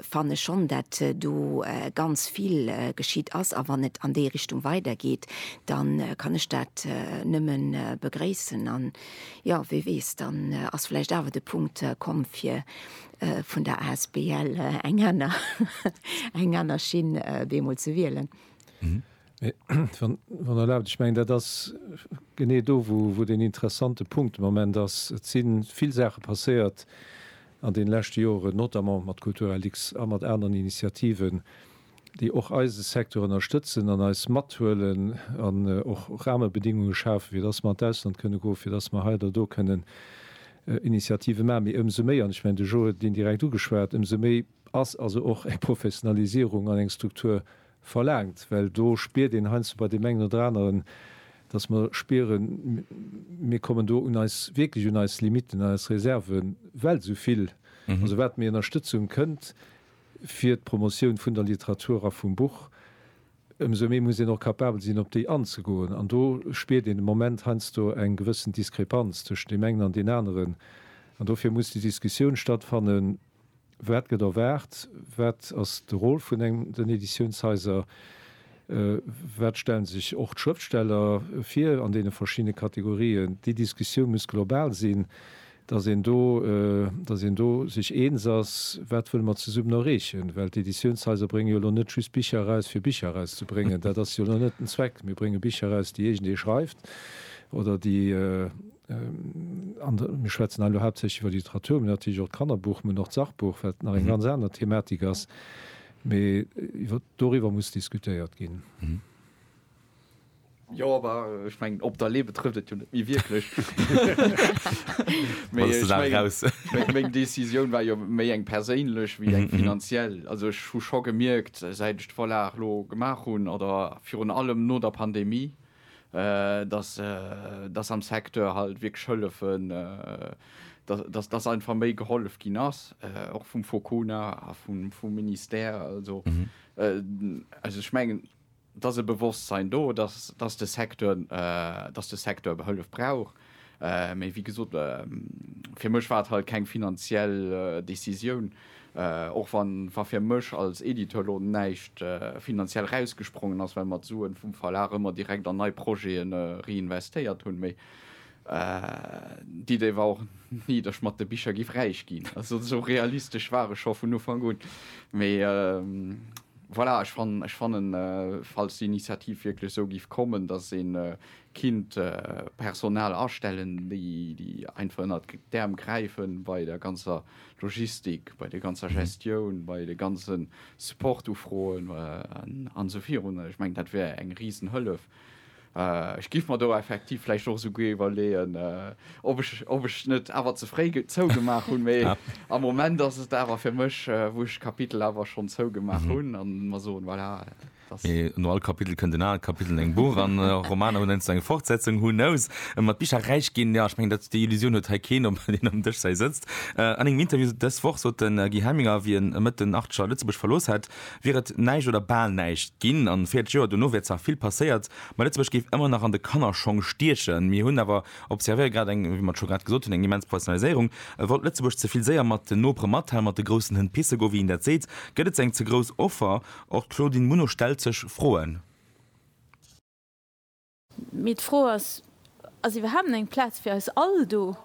fanne schonn, dat do ganz vill geschitt ass. A wann et an déi Richtung weidergeet, da kann ech dat nëmme begréissen. An, jo, wie weess, dann ass vläicht awer de Punkt komm, fir vun der asbl eng aner, eng aner Schinn bemol ze wielen. Mee, wann Der erlaabt, ech mengen, dat ass genee do, wou, wou deen interessante Punkt de Moment ass. Et si vill Saache passéiert, an den leschte Joeren, notamment mat Culturalix a mat aneren Initiativen, déi och eise Secteur ënnerstëtzen an eis mathuelen an och Rahmebedingungen schafen, fir dass mer an d'Ausland kënnen goen, fir dass mer hei oder do kënnen Initiativen maachen. Mee ëmsou méi, an ech mengen, de Joe huet et indirekt ugeschwat, ëmsou méi ass also och eng Professionalisierung an eng Struktur Verlaangt, well do spiert een heiansdo bei deem engen oder aneren, dass mer spieren, mir kommen do un eis, wierklech un eis Limitten, un eis Reserven, well esou vill, also wat méi Ënnerstëtzung kënnt fir d'Promotioun vun der Literatur a vum Buch, ëmsou méi muss een och capabel sinn, op déi anzegoen. An do spiert een de Moment heiansdo eng gewëssen Diskrepanz tëschent deem engen an deen aneren. An dofir muss déi Diskussioun stattfannen, Wat gëtt erwaart? Wat ass de Rôle vun den Editiounshaiser? Wat stellen sech och d'Schrëftsteller vir an deene verschiddene Kategorien? Déi Diskussioun muss global sinn, datt een do, datt een do sech eens ass, wat wëlle mer zesummen erreechen. Well d'Editiounshaiser bréngen jo elo net just Bicher eraus, fir Bicher erauszebréngen. Dat ass jo elo net den Zweck. Mir brénge Bicher eraus, déi iergendee schreift oder déi, an mir schwätzen elo haaptsächlech iwwer Literatur, mee natierlech och d'Kannerbuch, mee och d'Sachbuch, wat nach eng ganz aner Thematik ass, mee iwwer doriwwer muss diskutéiert ginn. Jo, awer ech mengen op d'Allee betrëfft et jo net méi wierklech. Mee ech mengen, meng Décisioun war jo méi eng perséinlech wéi eng finanziell. Also ech hu scho gemierkt, säit ech d'Vorlag elo gemaach hunn, oder virun allem no der Pandemie, dass dass am Secteur halt wierklech hëllefen, dass dass einfach méi gehollef ginn ass, och vum Focuna a vum vum Ministère. Also also ech mengen, et ass e Bewosstsein do, dass dass de Secteur dass de Secteur Hëllef brauch. Mee wéi gesot, fir mech war et halt keng finanziell Decisioun, och wa fir mech als Editeur elo näischt finanziell rausgesprongen ass, well mer d'Suen vum Verlag ëmmer direkt an nei Projeten reinvestéiert hunn. Mee d'Idee war och ni, dass ech mat de Bicher giff räich ginn. Also esou realistesch war ech scho vun Ufank un. Mee voilà, ech fannen, falls d'Initiativ wierklech esou giff kommen, dass een Kinnt Personal astellen, déi déi einfach ënnert d'Äerm gräifen bei der ganzer Logistik, bei der ganzer Gestioun, bei de ganze Support-Ufroen an esou virun. Ech mengen, dat wär eng risen Hëllef. Ech giff mer do effektiv vläicht och esouguer iwwerleeën, ob ech ob ech net awer ze fréi zougemaach hunn. Mee am Moment ass et awer fir mech, wou ech d'Kapitel awer schonn zougemaach hunn an mer soen, voilà. Mee no all Kapitel kënnt en anert Kapitel an engem Buch an Romaner hunn heiansdo eng Fortsetzung, who knows? Mat Bicher räich ginn, jo, ech mengen, dat déi Illusioun huet hei keen, obwuel een ëm Dësch hei sëtzt. An engem Interview dës Woch sot de Guy Hemminger, wéi en Mëtten Artscher Lëtzebuerg verlooss hätt, wier et näischt oder bal näischt ginn an 40 Joer dono wär zwar vill passéiert, ma Lëtzebuerg géif ëmmer nach an de Kannerschong stiechen. Mir hunn awer, observéiere grad eng, wéi mer et scho grad gesot hunn, eng immens Professionaliséierung. Wollt Lëtzebuerg ze vill séier mat den Nopere mathalen, mat de groussen Hënn pisse goen, wéi een dat seet? Gëtt et ze eng ze grouss Offer? Och d'Claudine Muno stellt sech Froen. Mee d'Fro ass, Ass iwwerhaapt eng Plaz fir eis all do?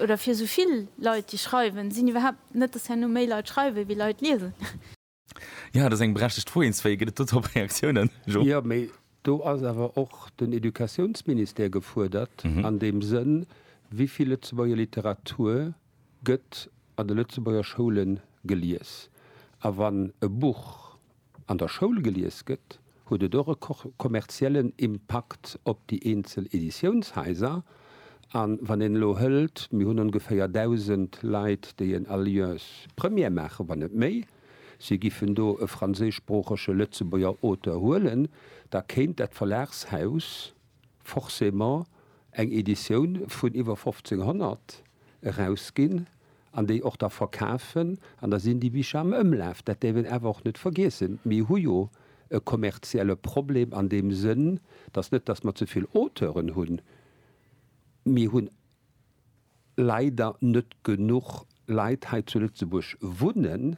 Oder fir esou vill Leit, déi schreiwen? Sinn iwwerhaapt net dass herno méi Leit schreiwen, wéi Leit liesen? Jo, dat ass eng berechtegt Fro. Eens wéi gëtt et dodrop Reaktiounen? Jo. Jo, mee do ass awer och den Educatiounsministère gefuerdert an deem Sënn, wéi vill Lëtzebuerger Literatur gëtt an de Lëtzebuerger Schoule gelies. A wann e Buch an der Schoul gelies gëtt, huet et och e kommerziellen Impakt op déi eenzel Editiounshaiser. A wann een elo hëlt, mir hunn ongeféier 1.000 Leit, déi en Alliance Première maachen, wann net méi, si giffen do e franséischsproochege Lëtzebuerger Auteur huelen, da kéint dat Verlagshaus forcément eng Editioun vun iwwer 1.500, erausginn an déi och da verkafen an da sinn déi Bicher am Ëmlaf. Dat däerf een awer och net vergiessen. Mir hu jo e kommerzielle Problem an deem Sënn, et ass net, datt mer ze vill Auteuren hunn, mir hu leider net genuch Leit hei zu Lëtzebuerg wunnen,